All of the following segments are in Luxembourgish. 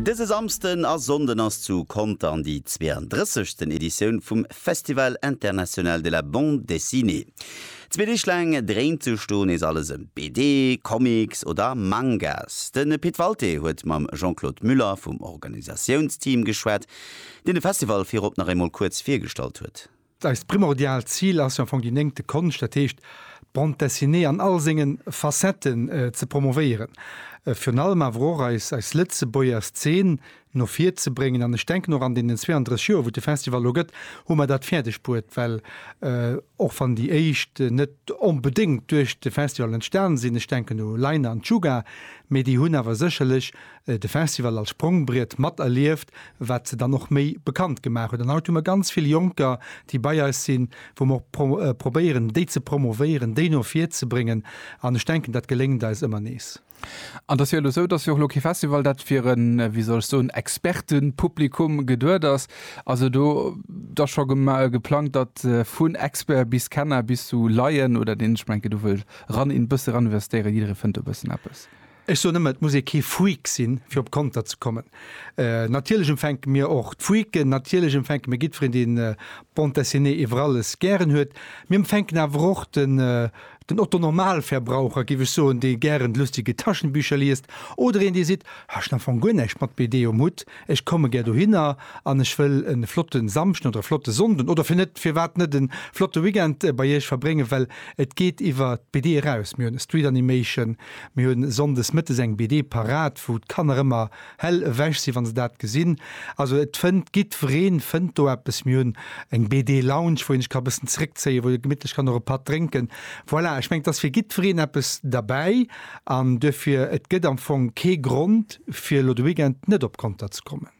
Dëse Samsden a Sonnden ass zu Contern déi 32. Editioun vum Festival International de la Bande Dessinée. Zwee Deeg laang dréint sech do nees alles ëm BD, Comics oder Mangas. De Pit Walté huet mam Jean-Claude Muller vum Organisatiounsteam geschwat, deen de Festival virop nach eemol kuerz virgestallt huet. Eist primordiaalt Zil ass jo am Fong déi néngte Konscht, dat heescht d'Bande Dessinée an all senge Facetten ze promovéieren, virun allem awer och eis Lëtzebuerger Szen no vir ze bréngen. An ech denken och an deenen 32 Joer, wou et de Festival elo gëtt, hu mer dat fäerdeg bruet, well och wann déi éischt net onbedéngt duerch de Festival entstan sinn, ech denken u Laina an d'Shuga, mee déi hunn awer sécherlech de Festival als Sprongbriet mat erlieft, wat se dann och méi bekannt gemaach huet. An haut hu mer ganz vill Jonker, déi bei eis sinn, wou mer och probéieren, déi ze promovéieren, déi no vir ze bréngen. An ech denken, dat geléngt eis ëmmer nees. An et ass jo elo esou, dass jo och elo kee Festival, dat fir e, wéi soll ech soen, Expertepublikum geduet ass. Also do ass scho geplangt, datt vun Expert bis Kenner bis zu Laien oder deen, ech mengen, do wëll eran, een bësse eraninvestéieren, jidderee fënnt do e bëssen eppes. Ech soen ëmmer, et muss ee kee Freak sinn, fir op Konter ze kommen. Natierlech empfänke mir och d'Freaken, natierlech empfänke mir jiddwereen, dee Bande Dessinée iwwer alles gären huet. Mir empfänken awer och den, den Otto-Normalverbraucher, géif ech soen, dee gären lustige Taschenbücher liest, oder een, dee seet, Ech hunn am Fong guer näischt mat BD um Hutt, ech komme gär dohinner an ech wëll e flotte Samschden oder e flotte Sonnde oder fir net, firwat net e flotte Weekend bei Iech verbréngen, well et geet iwwer d'BD eraus. Mir hunn e Street Animation, Mir hunn Sonndes Mëttes eng BD parat, wou d'Kanner ëmmer hell ewech sinn, wa se dat gesinn. Also et fënnt, giddwereen fënnt do eppes. Mir hunn eng BD Lounge, wou ee sech ka bëssen zeréckzéien, wou ee gemittlech kann och e Patt drénken. Voilà, ech mengen, et ass fir giddwereen eppes derbäi an duerfir, et gëtt am Fong kee Grond, fir elo de Weekend net op Conter ze kommen.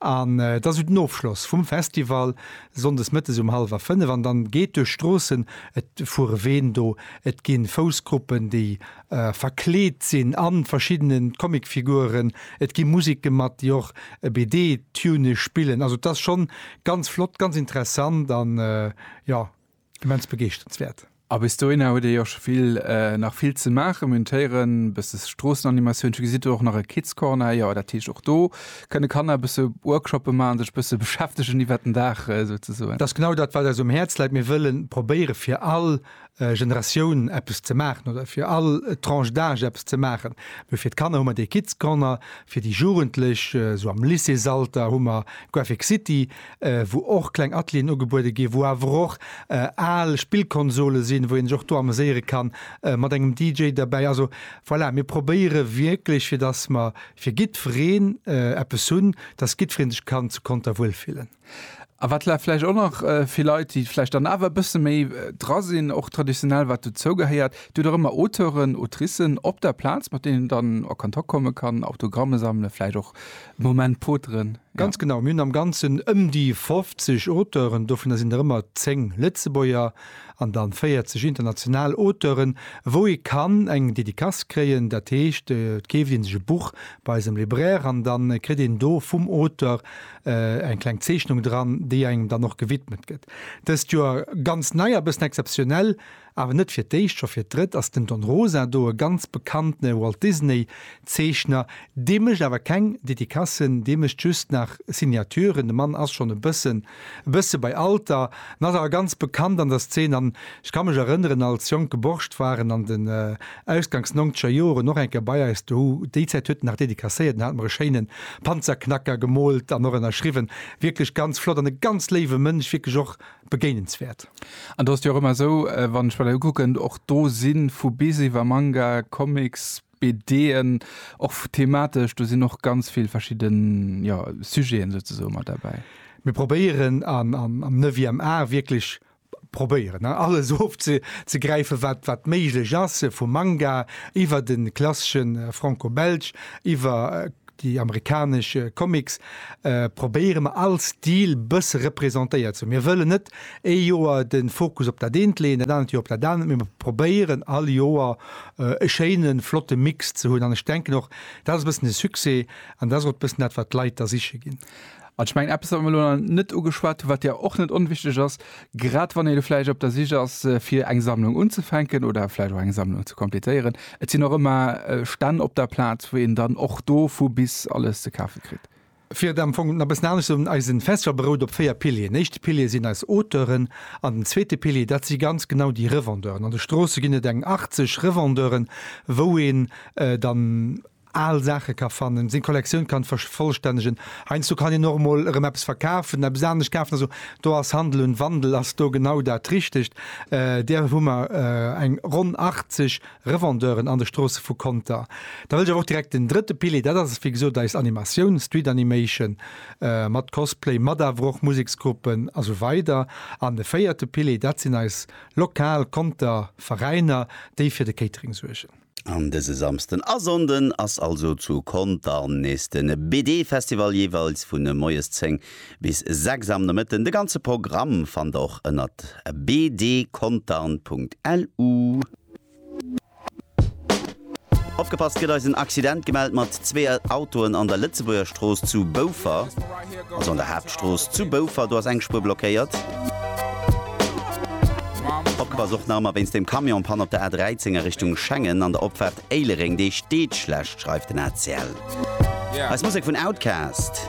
An et ass esou den Ofschloss vum Festival, sonndes mëttes um hallwer fënnef, an dann geet duerch d'Stroossen, et fuere Ween do, et gi Foussgruppen, déi verkleet sinn a verschiddene Comicfiguren, et gi Musek gemat, déi och e BD-Tune spillen. Also et ass schonn ganz flott, ganz interessant an jo. Immens begeeschternswäert. A bis dohinner huet ee jo scho vill, nach vill ze maachen. Mir hunn d'Héieren, e bësse Stroossenanimatioun, gesitt do och nach e Kids Corner, jo dat heescht och do kënne Kanner e bësse Workshoppe maachen, sech e bësse beschäftegen iwwert den Dag souzesoen. Dat ass genau dat wat eis um Häerz läit. Mir wëlle probéiere fir all Generatioun eppes ze maachen oder fir all Tranche d'âge eppes ze maachen. Mee fir d'Kanner hu mer dee Kids Corner, fir déi Jugendlech esou am Lycéesalter hu mer Graphic City, wou och kleng Atelieren ugebuede ginn, wou awer och al Spillkonsole sinn, wou een sech och do ameséiere kann, mat engem DJ derbäi. Also voilà, mir probéiere wierklech, fir dass mer fir jiddwereen eppes hunn, dass jiddweree sech kann zu Conter wuelfillen. A wat vläicht och nach fir Leit, déi vläicht dann awer e bësse méi dra sinn, och traditionell, wat dozou gehéiert, Dir hutt och ëmmer Auteuren, Autricen op der Plaz, mat deenen een dann a Kontakt komme kann, Autogramme sammele, vläicht och Moment poteren, jo. Ganz genau, mir hunn am Ganzen ëm déi 50 Auteuren, dovunner sinn der ëmmer 10 Lëtzebuerger an dann 40 international Auteuren, wou ee kann eng Dedicace kréien. Dat heescht, et keeft ee sech e Buch bei eisem Libraire an da kritt een do vum Auteur eng kleng Zeechnung dran, déi engem dann och gewidmet gëtt. Dëst Joer ganz nei a bëssen exzeptionell, Awer net fir d'éischt, scho fir d'drëtt ass den Don Rosa do, e ganz bekanntene Walt Disney Zeechner. Dee mécht awer keng Dedicassen, dee mécht just nach Signaturen. De Mann ass schonn e bëssen e bësse bei Alter, en ass awer ganz bekannt an der Szene. An ech ka mech erënneren, als jonke Borscht war en an den ausgangs nongzeger Joren och eng Kéier bei eis dohu. Déi Zäit huet en nach dedicacéiert, en hat mer e schéine Panzerknacker gemoolt an och ënnerschriwwen. Wierklech ganz flott an e ganz léiwe Mënsch, wierklech och begéinenswäert. An do ass et jo och ëmmer esou, wann ech mer dat ukucken, och do si vu bis iwwer Manga, Comics, BDen, och thematesch, do sinn och ganz vill verschidde Sujeten souzesoe mat derbäi. Mir probéieren am neuvième art wierklech probéieren alles ofzegräifen, wat méiglech ass, vum Manga iwwer de klassesche Franco-Belge, iwwer Déi amerikanesch Comics probéiere mer all Stil bësse representéiert ze hunn. Mir wëllen net ee Joer de Fokus op dat eent leeën, dat anert Joer op dat anert, mee mer probéieren all Joer e schéine flotte Mix ze hunn. An ech denken och, dat ass e bëssen de Succès an dat ass och e bëssen dat, wat d'Leit da siche ginn. An ech mengen, eppes, wat mer elo nach net ugeschwat hunn, wat jo och net onwichtig ass, grad wann ee elo vläicht op der Sich ass, fir eng Sammlung unzefänken oder vläicht och eng Sammlung ze completéieren, Et sinn och ëmmer Stänn op der Plaz, wou een dann och do vu bis alles ze kafe kritt. Fir et am Fong nach e bëssen anescht ze soen, Eisen Festival berout op véier Pilieren. Den éischte Pilier sinn eis Auteuren an den zweete Pilier, dat si ganz genau déi Revendeuren. An de Stroosse ginn et eng 80 Revendeuren, wou een dann. al Saache ka fannen, seng Kollektioun kann vervollstännegen. Heiansdo kann een och emol erëm eppes verkafen, eppes anescht kafen. Also do ass Handel und Wandel ass do genau dat Richtegt. Där hu mer eng ronn 80 Revendeuren an de Stroosse vu Conter. Da wëll ech awer och direkt den drëtte Pilier, dat ass wéi gesot eis Animatioun, Street Animation, mat Cosplay, mat awer och Museksgruppen a sou weider. An de véierte Pilier, dat sinn eis lokal Conter Veräiner, déi fir de Catering suergen. An dëse Samsden a Sonnden ass also zu Contern nees de BD Festival, jeeweils vu moies 10 bis 6 am Nomëtten. De ganze Programm fannt der och ënnert bdcontern.lu. Opgepasst, et gëtt eis en Accident gemellt mat zwee Autoen an der Lëtzebuerger Strooss zu Boufer. Also an der Haaptstrooss zu Boufer, do ass eng Spuer blockéiert. Opgepasst och nach ëmmer wéinst deem Camion-Pann op der A 13 a Richtung Schengen an der Opfaart Éilereng. Dee steet schlecht, schreift den ACL. Eis Musek vun Outkast.